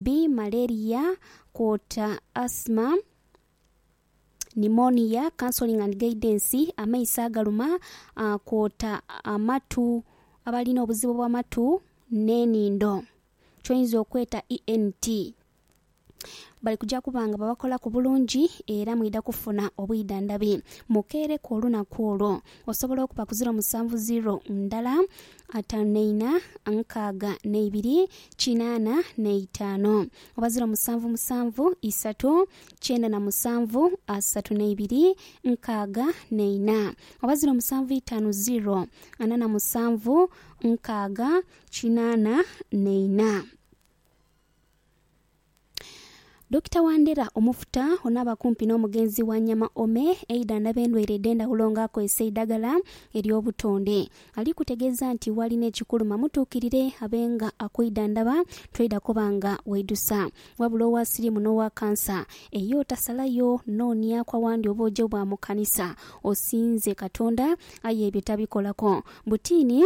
bi malaria kwota asthma, pneumonia, counselling and guidance, amaiso agaluma kwota amatu, abalina obuzibu bw'amatu n'enhindo kyoyinza okweta ENT bali kuja kuba nga babakolaku bulungi era mwidha kufuna obwidhandhabi. Mukeereku olunaku olwo. Osobola okuba ku ziro musanvu ziro ndala ataanu n'eina, nkaaga n'eibiri, kinaana n'eitaano. Oba ziro musanvu musanvu, isatu, kyenda na musanvu, asatu n'eibiri, nkaaga n'eina. Oba ziro musanvu itaanu ziro, ana na musanvu, nkaaga, kinaana n'eina. Dokita Wandera Omufuta onaaba kumpi n'omugenzi Wanyama Ome eidhandha b'endwaire edh'endhawulo nga akozesa eidhagala ery'obutonde. Ali kutegeeza nti w'ali n'ekikuluma mutuukirire abe nga akwidhandhaba toidha kuba nga weidhusa. Wabula owa siriimu n'owa kansa eyo otasalayo nooniaku awandi obwojo bwa mu kanisa osinze Katonda aye ebyo tabikolako. Butiini.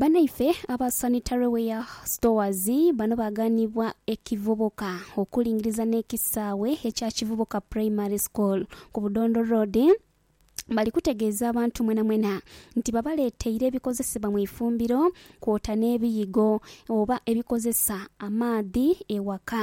Banaife aba Sanitary Ware Stores bano baganibwa ekivubuka okulingiriza n'ekisaawe ekya Kivubuka Primary School ku Budondo Road bali kutegeeza abantu mwenamwena nti babaleeteire ebikozesebwa mu ifumbiro kwota n'ebiyigo oba ebikozesa amaadhi ewaka.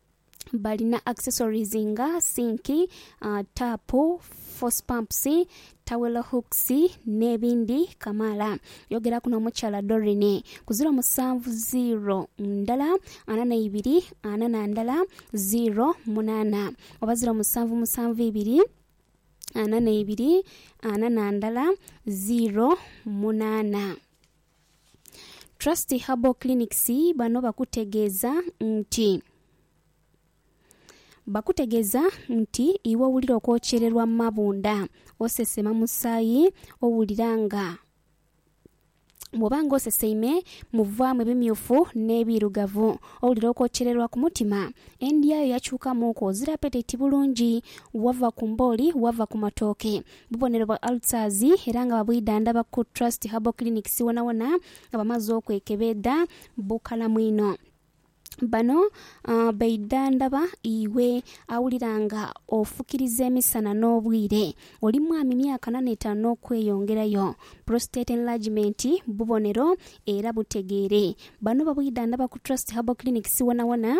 balina accessories nga sinki, taapu, force pumps, towel hooks n'ebindi kamaala. Yogeraku n'omukyala Doreen ku ziro musanvu ziro ndala ana n'eibiri ana na ndala ziro munaana oba ziro musanvu musanvu ibiri ana n'eibiri ana na ndala ziro munaana. Trust Herbal Clinics bano bakutegeeza nti bakutegeeza nti iwe owulira okwokyererwa mu mabunda, osesema musaayi, owulira nga bwoba nga oseseime muvaamu ebimyufu n'ebiirugavu, owulira okwokyererwa ku mutima, endya yo yakyukamuuku, ozira apeteti bulungi, wava ku mbooli, wava ku matooke, bubonero bwa ulcers era nga babwidhandhaba ku Trust Herbal Clinics wonawona nga bamaze okwekebeedha bukalamu inho. Bano beidhandhaba iwe awulira nga ofukiriza emisana n'obwire, oli mwami myaka nana etaanu n'okweyongerayo, prostate enlargement bubonero era butegeere. Bano babwidhandhaba ku Trust Herbal Clinics wonawona.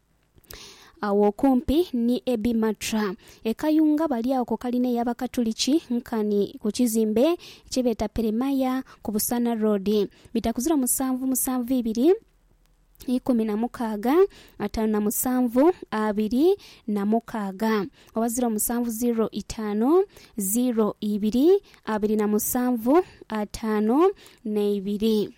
Agho okumpi ni Ebi Matra e Kayunga balyagho ku kalina ey'Abakatuliki nkani ku kizimbe kye beeta Peremaya ku Busaana Road. Bitakuzira musanvu musanvu ibiri ikumi na mukaaga ataanu na musanvu abiri na mukaaga oba ziro musanvu ziro itaanu ziro ibiri abiri na musanvu ataanu na ibiri.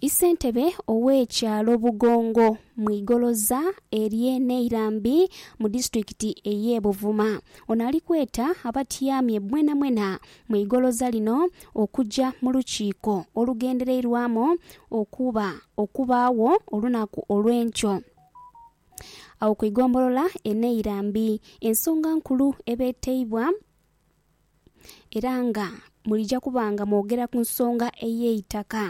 Isentebe owe kyalo Bugongo mwigoloza erye Neirambi mu disitulikiti eye Buvuma ono alikweta abatyamye mwena mwena mwigoloza lino okuja mu lukiiko olugendereirwamu okuba okubaagho olunaku olwenkyo agho ku igombolola e Neirambi ensonga nkulu ebeteibwa era nga mwidhija kuba nga mwogera ku nsonga ey'eitaka.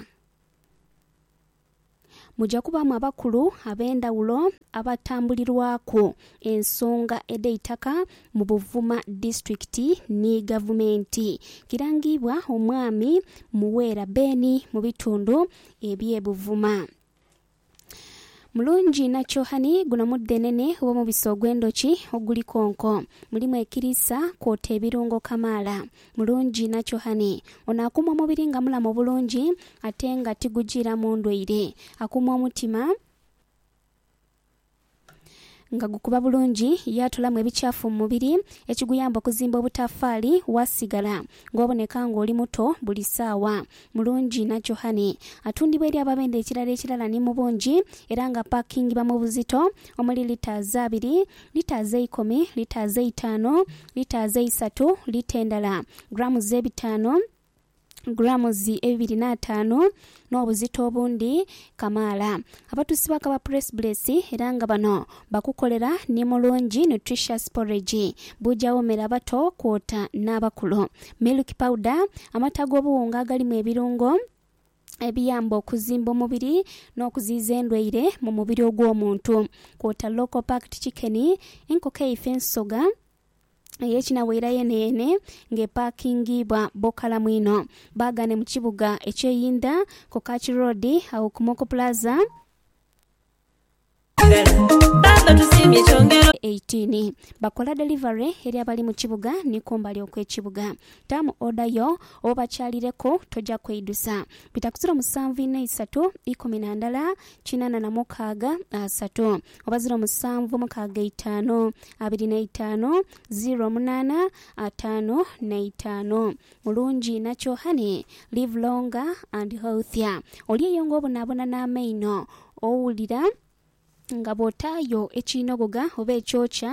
Mwidhija kubaamu abakulu ab'endhaghulo abatambulirwaku ensonga edh'eitaka mu Buvuma Disitulikiti ni Gavumenti. Kirangiibwa Omwami Muwera Ben mu bitundu eby'e Buvuma. Mulungi inha kyohani guno mudhenene gh'omubisi ogw'endhoki oguli konko. Mulimu ekiriisa kwota ebirungo kamaala. Mulungi inha kyohani. Ono akuuma omubiri nga mulamu bulungi ate nga tigujiiramu ndwaire. Akuuma omutima. Nga gukuba bulungi, yaatolamu ebikyafu mu mubiri ekiguyamba okuzimba obutafaali, waasigala ng'oboneka ng'oli muto buli saawa. Mulungi na Johane atundibwa eri ababendhe ekirala ekirala ni mu bungi era ng'apaakingibwa mu buzito omuli litres abiri, litres eikumi, litres eitaanu, litres eisatu, lita endala, grams ebitaanu, gulaamuzi ebibiri n'ataanu n'obuzito obundi kamaala. Abatuusi bakaba Press Bless era nga bano bakukolera ni Mulungi Nutritious Porridge, buuja woomera abato kwota n'abakulu, Milk Powder, amata g'obuwunga agalimu ebirungo ebiyamba okuzimba omubiri n'okuziyiza endwaire mu mubiri ogw'omuntu, kwota Local Packed Chicken, enkoko eife ensoga, ey'ekinabwira yeeneyeene ng'epaakingibwa bokalamu inho. Baagane mu kibuga eky'einda ku Kach Road agho ku Moko Plaza. 18, Bakola delivery eri abali mu kibuga ni kumbali okw'ekibuga. Taamu oda yo obobakyalireku, toja kweidusa. Bitakusira omusanvu inho isatu ikumi na ndala kinana na mukaaga asatu oba ziro musanvu mukaaga itaanu abiri na itaanu ziro munaana ataanu na itaanu mulungi inha kyo honey live longer and healthier oli eyo nga obonabona n'amaino owulira nga bwotaayo ekiinogoga oba ekyokya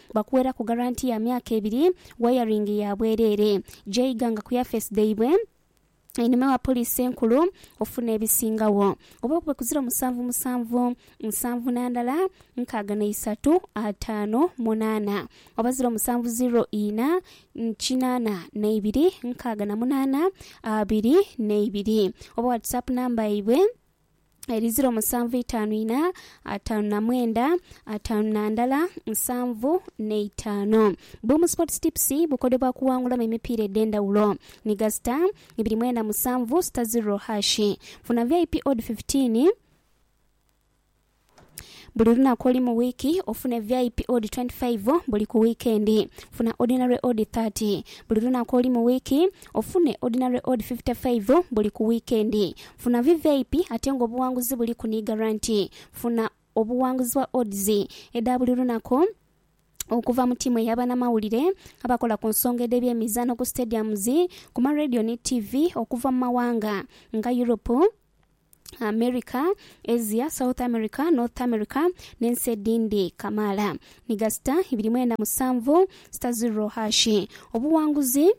Bakuweraku garanti ya myaka ebiri, wayaringi ya bwereere gy'oiganga ku yafeesi dhaibwe einhuma ewa Poliisi Enkulu ofuna ebisingagho. Oba bube ku ziro musanvu musanvu nsanvu na ndala nkaaga na isatu ataano munaana oba ziro musanvu ziro ina kinaana na ibiri nkaaga na munaana abiri na ibiri oba whatsapp namba yaibwe. eri ziro musanvu itaanu ina ataanu na mwenda ataanu na ndala nsanvu n'eitaano. Boom Sports Tips bukodyo bwa kuwangulamu emipiira edh'endhawulo ni ghazita ibiri mwenda musanvu sita ziro hashi. Funa VIP odd fifteen. Buli lunaku oli mu wiiki ofune vip odi twenty five buli ku wiikendi funa ordinary odi thirty buli lunaku oli mu wiiki ofune ordinary odi fifty five buli ku wiikendi funa vvip ate nga obuwanguzi buliku ni garanti funa obuwanguzi bwa odds edha buli lunaku okuva mu tiimu eya banamawulire abakola ku nsonga edh'ebyemizaano ku stadiums, ku ma radio ni ttivi okuva mu mawanga nga Europe, America, Asia, South America, North America n'ensi edhindi kamaala ni gasita ibiri mwenda musanvu sita ziro hashi. Obuwanguzi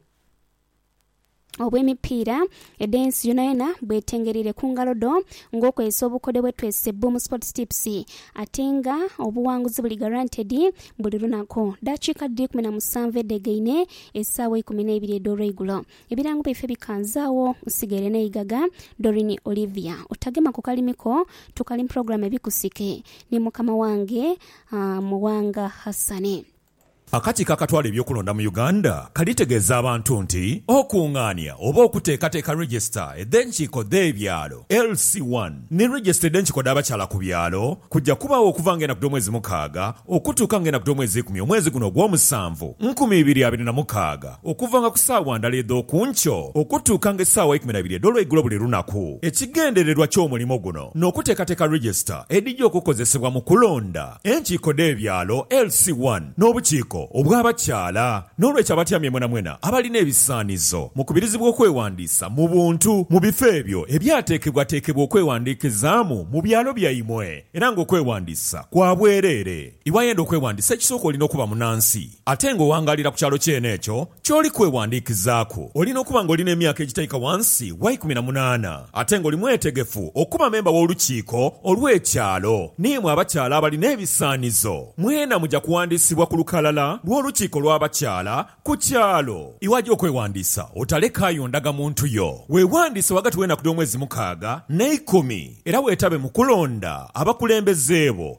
obw'emipiira edh'ensi yonayona bwetengereire ku ngalo dho ng'okozesa obukodyo bwe twese Boom Sports Tips ate nga obuwanguzi buli guaranteed buli lunaku. Daakiika dhiri ikumi na musanvu edhegaine, esaawa ikumi n'eibiri edh'olweigulo. Ebirango byaife bikanzaagho nsigaire neigaga Doreen Olivia otagema ku kalimi ko tukali muprogram ebikusike ni mukama wange Muwanga Hassan. Akakiiko akatwala eby'okulonda mu Uganda kalitegeeza abantu nti okungaania oba okuteekateeka Register edh'enkiiko dh'ebyalo, LC one, ni Register edh'enkiiko dh'abakyala ku byalo kuja kubaagho okuva nga enaku dh'omwezi mukaaga okutuuka nga enaku dh'omwezi ikumi omwezi guno ogw'omusanvu, nkumi ibiri abiri na mukaaga. Okuvanga ku saawa ndala edh'oku nkyo okutuukanga esaawa eikumi na ibiri edh'olweigulo buli lunaku. Ekigendererwa ky'omulimo guno n'okuteekateeka register edhija okukozesebwa mu kulonda enkiiko dh'ebyalo, LC one, n'obukiiko obw'abakyala. N'olwekyo abatyamye mwenamwena abalina ebisaanizo mukubirizibwa okwewandiisa mu buntu mu bifo ebyo ebyateekebwateekebwa okwewandiikizaamu mu byalo byaimwe era ng'okwewandiisa kwa bwereere. Iwayenda okwewandiisa ekisooka olina okuba munansi. Ate nga owangaalira ku kyalo kyene ekyo ky'oli kwewandiikizaaku, olina okuba nga oli n'emyaka egitaika wansi wa ikumi na munaana, ate nga oli mwetegefu okuba memba w'Olukiiko olw'Ekyalo. N'imwe abakyala abalina ebisaanizo, mwena muja kuwandiisibwa ku lukalala lw'Olukiiko lw'Abakyala ku kyalo. Iwaja okwewandiisa, otalekaayo ndagamuntu yo. Weewandiise ghagati w'enaku dh'omwezi mukaaga n'eikumi, era weetabe mu kulonda abakulembeze bo